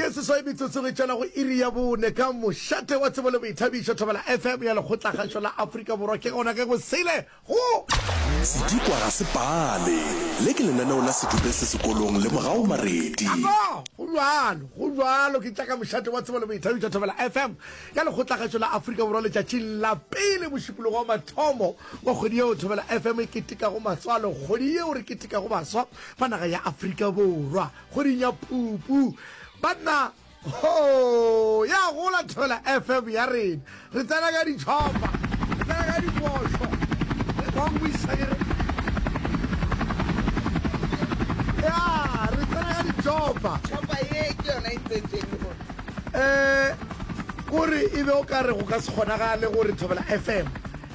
ke seswai metsotsong e tšwela go iri ya bone ka mošate wa tsebo le boithabišo thobela fm ya lekgotlakgašo la aforika borwa ke gona ke go sele go sedikwa ga se pale le ke lenaneo la sedupe se sekolong le morago maredi go jalo go jalo ke tša ka mošate wa tsebo le boithabišo thobela fm ya lekgotlakgašo la aforika borwa letšatšing la pele mošupologo wa mathomo wa kgwedi yeo thobela fm e ketekago maswa le kgwedi yeo re ketekago baswa fa naga ya Afrika Borwa kgweding ya Phupu. Banna ho ya gola Thobela FM ya rena. Re tsena ka ditšhopa, re tsena ka dikošo. Re kongwisa ke re. Ya, re tsena ka ditšhopa. Chopa ye ke yona e tsetšeng go. Eh, kore e be o ka re go ka se kgonagale gore Thobela FM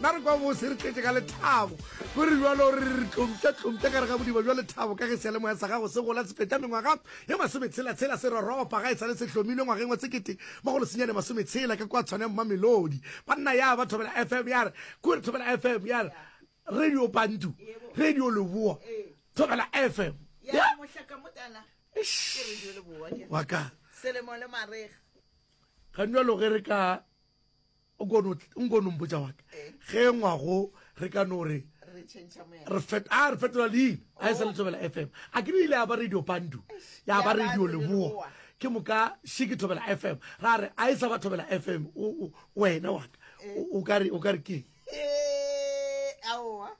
na re kwa bose re tletse ka lethabo go re jalo re re tlompša-tlompša ka re ga bodiba jwa lethabo ka ge sealemoya sa gago se gola se feta mengwaga ye masometshela-tshela se roropa ga e sa le se hlomilwe ngwageng wa sekete magolo senyane masometshela ka kwa tshwane mmamelodi banna ya ba thobela fm ya re ko re thobela fm ya re radio bantu radio leboa thobela fm wa ka ga njalo ge re ka nkono mpotsa wa ka ge ngwago re ka no re re fetola leina a e sa letsobela f m a ke ile ya ba radio pandu ya ba radio leboa ke moka še ke thobela f m ra re a e sa ba thobela f m wena wa ka o ka re keng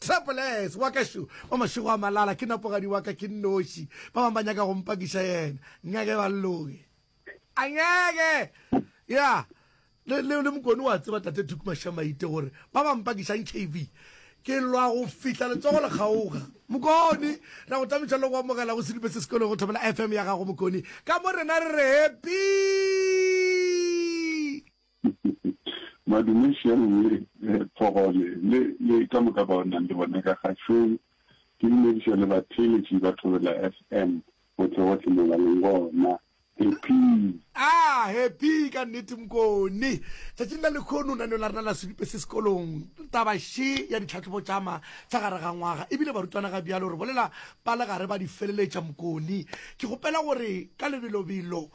Travelers wa ka šo wa mašego a malala ke napogadi wa ka ke nnoši ba bang ba nyaka go mpakiša yena ngeke ba loge a ngeke ya le le le mokone wa tseba tate Duke Mashamaite gore ba ba mpakiša nkv ke lwa go fihla letsogo le kgaoga mokone ra go tamiša le go amogela go sedipe se sekolo go thobela FM ya gago mokone ka mo rena re re happy Madume Shero le Phogole le le ka moka bao nang le bona ka kgašong, ke dumediša le batheeletši ba Thobela FM gohle gohle molaleng wona. Happy! Aa, happy ka nnete Mkoni. Tšatšing la lekhono naneo la rena la Sebipe se Sekolong, taba še ya ditlhahlobo tšama tša gare ga ngwaga, ebile barutwana ga bjalo re bolela ba legare ba di feleletša Mkoni. Ke kgopela gore ka lebelobelo.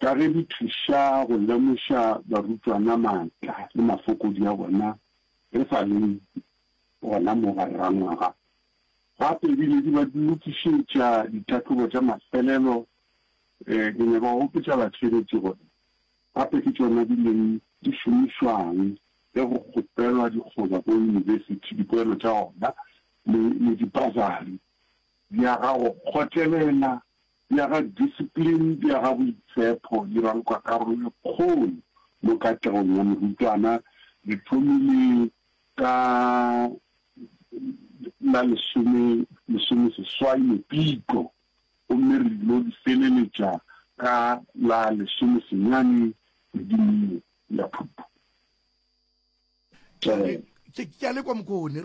ka ge di thuša go lemoša barutwana maatla le mafokodi a bona re sa le gona mo ba rera ngwaga. Gape e bile di ba lokišetša ditlhahlobo tša mafelelo. Ke nyaka go gopotša batsheretši gore gape ke tšona di leng di šomišwang ge go kgopelwa dikgoba ko yunibesithi dipoelo tša ona le dipasari. Di aga go kgotlelela bja ga discipline bja ga boitshepho di rankwa karolo e kgolo mo katlegong ya morutwana, di thomile ka la lesome lesome seswai Mopitlo gomme re ilo di feleletša ka la lesome senyane kgweding ye ya Phupu. Ke a le kwa Mokone.